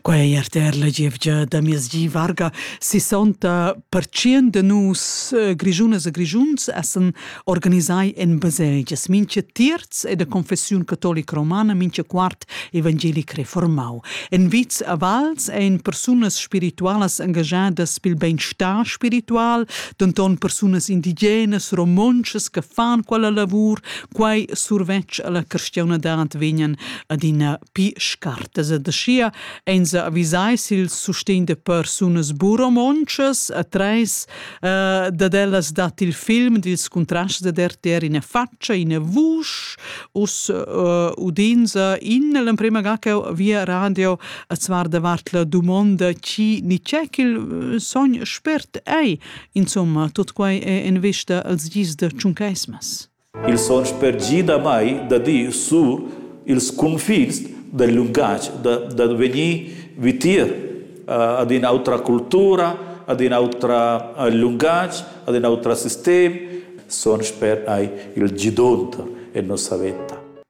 Quei RTR la gievgia da miezgi varga 60% de nus eh, grigiunas e grigiuns essen organisai en baselgias, mincha terz e de confessiun catolica romana, mincha quart evangelic reformau. En vits a vals ein persunas spiritualas engagiadas pil beinstar spiritual, denton persunas indigenas, romontschas che fan quella lavur Quai survetsch a la cristiaunadad vegnan adina pi scartas ed aschia ein se avisai sil sustegn de persunas buromontschas a treis uh, dad ellas dat il film dils contrasts de RTR ina faccia, ina vusch, us uh, udinza in l'emprema ga che via radio a zvar davart la domanda chi ni c'è il sogn spert ei. Insomma, tot quai è en vista als gis de Tschuncaismas. Els han spergì damai da dir sur ils cunfins dal lungatg da, da vegnir vitier ad in'autra cultura, ad in autra lungatg, ad in auter sistem, son sper ei il gidonter en nossa veta.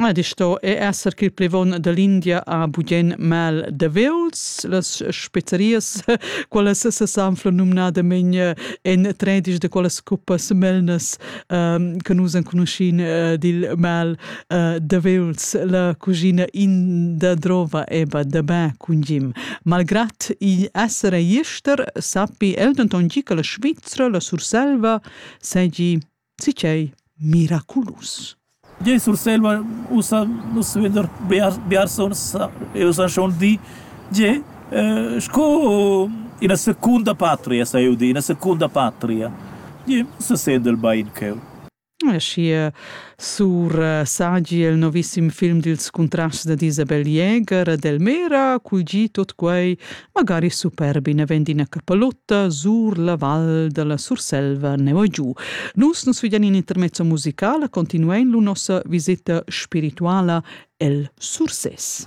Ed sto è esser ch'il plevon dall'India ha bugen mal de veuls. Las spezzerias, quelles sesanfla numnadamein en tredisch de quelles cuppas melnas ehm, che nus enconuscin eh, dil mal eh, de veuls. La cucina inda drova eba de be cun gim. Malgrat igl esser ei ester, sappi el denton gi che la Svizra, la Surselva, segi Sicchei miraculus. Jei Surselva ussa nus vender biars biarsons e ussa schon di tge eh, sco ina secunda patria sa eu di, ina secunda patria. Jei se sendel bain cheu. Schi sur eh, sagi il novissim film dils contrasts da Isabel Jäger e Delmera, cul gi tot quei Magari superbi ne vend ina capalotta sur la val dalla Surselva neu giu. Nus nus vegan in intermezzo musicala continuein lu nossa viseta spirituala el Sursès.